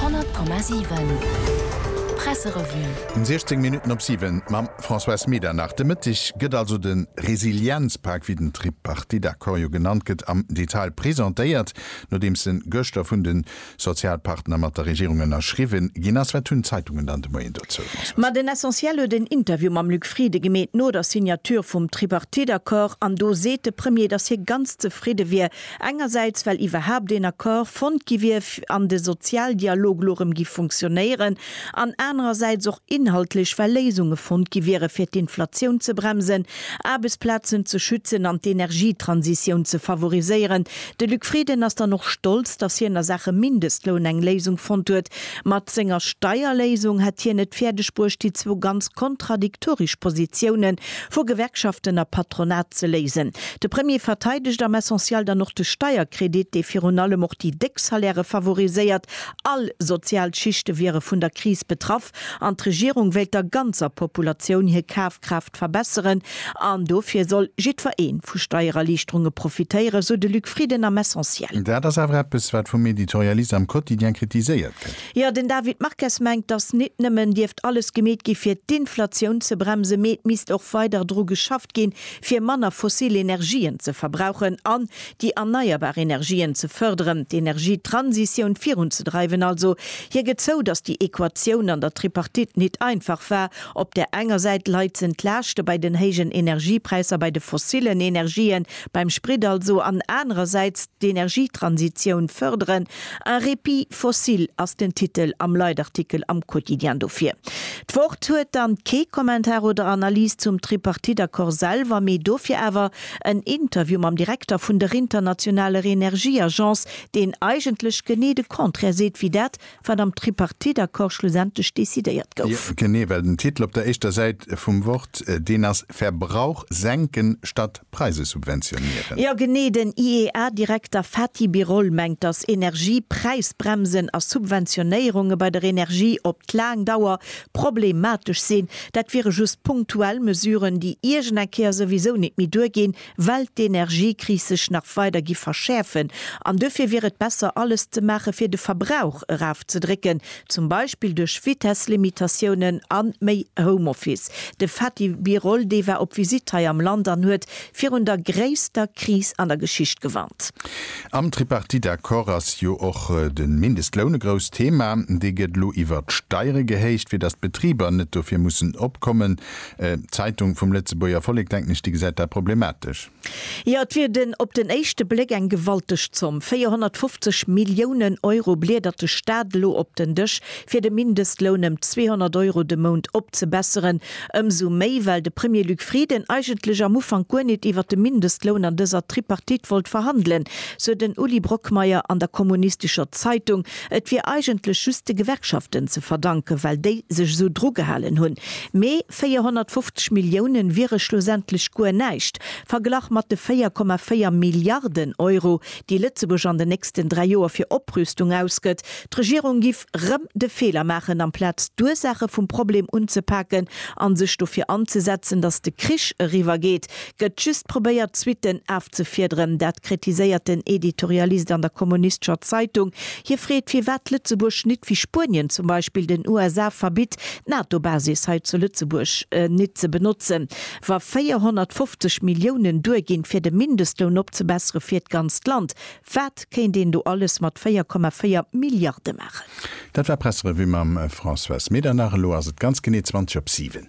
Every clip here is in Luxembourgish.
100,7 Presserevue. 16 Minutten op 7 mam Françoise Medernach. De Mëtteg gëtt also de Resilienzpak, wéi den Tripartiteaccord jo genannt gëtt, am Detail presentéiert, nodeems en gëschter vun de Sozialpartner mat der Regierung ënnerschriwwe ginn ass. Wat hunn d'Zeitungen dann de Moien dozou, Françoise? Ma den Essentiel huet en Interview mam Luc Frieden gemeet no der Signature vum Tripartiteaccord an do seet de Premier, datt hie ganz zefridde wier Engersäits well iwwerhaapt een Accord fonnt gi wier an de Sozialdialog elo erëm géif funktionéieren, an anerersäits och inhaltlech well Léisunge fonnt gi wiere fir d'Inflatioun ze bremsen, Aarbechtsplazen ze schützen an d'Energietransitioun ze favoriséieren. De Luc Frieden ass dann och stolz, datt hien a Saache Mindestloun eng Léisung fonnt huet, Mat senger Steierléisung hätt hien et fäerdeg bruecht, déi zwou ganz kontradiktorisch Positioune vu Gewerkschaften a Patronat ze léisen. De Premier verteidegt am Essentiel dann och de Steierkredit, dee virun allem och déi déck Salairë favoriséiert. All sozial Schichte wiere vun der Kris betraff an d'Regierung wéilt der ganzer Populatioun hir Kafkraaft Wirtschaft verbesseren an dofir soll jiddwer ee vu Steiererliichterunge profitéieren, sou de Luc Frieden am Essentiel. Dat ass awer eppes, wat vum Editorialiste am Quotidien kritiséiert gëtt. Jo, den David Marques mengt, datt nit nëmmen dierft alles gemeet gi fir d'Inflatioun ze bremsen, mee et misst och weider dru geschafft ginn, fir manner fossil Energien ze verbrauchen an déi erneierbar Energien ze fërderen, d'Energietransitioun virunzedreiwen also. Hie gëtt zou, datt déi Equatioun an der Tripartite nit einfach war. Op där enger Säit leizen d'Laaschte bei den héijen Energiepräisser bei de fossillen Energien, beim Sprit also, an anerersäits d'Energietransitioun fërderen. Un répit fossile ass den Titel am Leitartikel am Quotidien dofir. D'Wort huet dann kee Kommentar oder Analys zum Tripartite-Accord selwer, mee dofir awer en Interview mam Direkter vun der internationaler Energieagence, deen eigentlech genee de Contraire seet wéi dat, wat am Tripartite-Accord schlussendlech decidéiert gouf. Genee, well den Titel op der éischter Säit vum Wort, deen ass Verbrauch senken statt Preise subventionieren. Jo, genee, den IEA-Direkter Fatih Birol mengt, datt Energiepräisbremsen a Subventionéierunge bei der Energie op d'laang Dauer problematesch sinn. Dat wiere just punktuell Mesuren, déi iergend eng Kéier souwisou nit méi duerginn, well d'Energiekris sech nach weider gi verschäerfen an duerfir wier et besser alles ze maache fir de Verbrauch eraufzedrécken, zum Beispill duerch Vitesslimitatiounen a méi Homeoffice. De Fatih Birol, dee war op Visitt hei am Land an huet virun der gréisster Kris an der Geschicht gewarnt. Am Tripartite-Accord ass jo och de Mindestloun e grousst Thema. Dee gëtt elo iwwert d'Steiere gehéicht, fir datt d'Betriber net dofir mussen opkommen. D'Zeitung vum Lëtzebuerger Vollek, denken ech, déi gesäit dat problematesch. Jo, et wier den, op den éischte Bléck, eng gewalteg Zomm, 450 Milliounen Euro bliedert de Staat elo op den Dësch, fir de Mindestloun ëm 200 Euro de Mount opzebesseren. Ëmsou méi, well de Premier Luc Frieden eigentlech am Ufank guer nit iwwer de Mindestloun an dëser Tripartite wollt verhandelen, sou den Uli Brockmeyer an der kommunistescher Zeitung. Et wier eigentlech just de Gewerkschaften ze verdanken, well déi sech esou drugehalen hunn. Mee 450 Milliounen wiere schlussendlech guer näischt, verglach mat de 4,4 Milliarden Euro, déi Lëtzebuerg an den nächsten dräi Joer fir Oprüstung ausgëtt. D'Regierung giff rëm de Feeler maachen, amplaz d'Ursaache vum Problem unzepaken a sech dofir anzesetzen, datt de Krich eriwwer geet, Gëtt just probéiert d'Suiten afzefiederen, dat kritiséiert den Editorialist an der kommunistescher Zeitung. Hie freet, firwat Lëtzebuerg nit wéi Spuenien zum Beispill den USA verbitt, d'NATO-Basis hei zu Lëtzebuerg nit ze benotzen, wa 450 Milliounen duerginn, fir de Mindestloun opzebessere fir d'ganzt Land. Wat kéint een do alles mat 4,4 Milliarde maachen? Dat war Presserevue mam Françoise Medernach. Elo ass et ganz genee 20 op 7.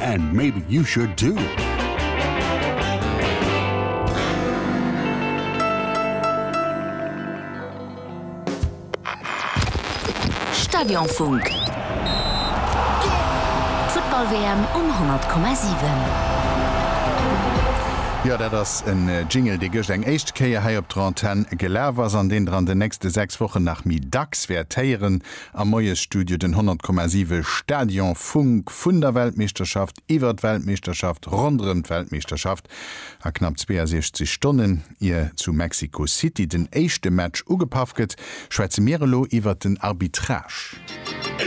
And maybe you should too. Stadionfunk. D'Futtball-WM um 100,7. Jo, dat ass e Jingle, dee gëscht eng éischt Kéier hei op der Antenn gelaf ass an deen Der an den nächste sechs Wochen nach méi dacks wäert héieren. Am Moiesstudio den 100,7 Stadion Funk vun der Weltmeeschterschaft, iwwert d'Weltmeeschterschaft, ronderëm d'Weltmeeschterschaft a knapp 62 Stonnen ier zu Mexico City den éischte Match ugepaff gëtt, schwätze mir elo iwwert den Arbitrage.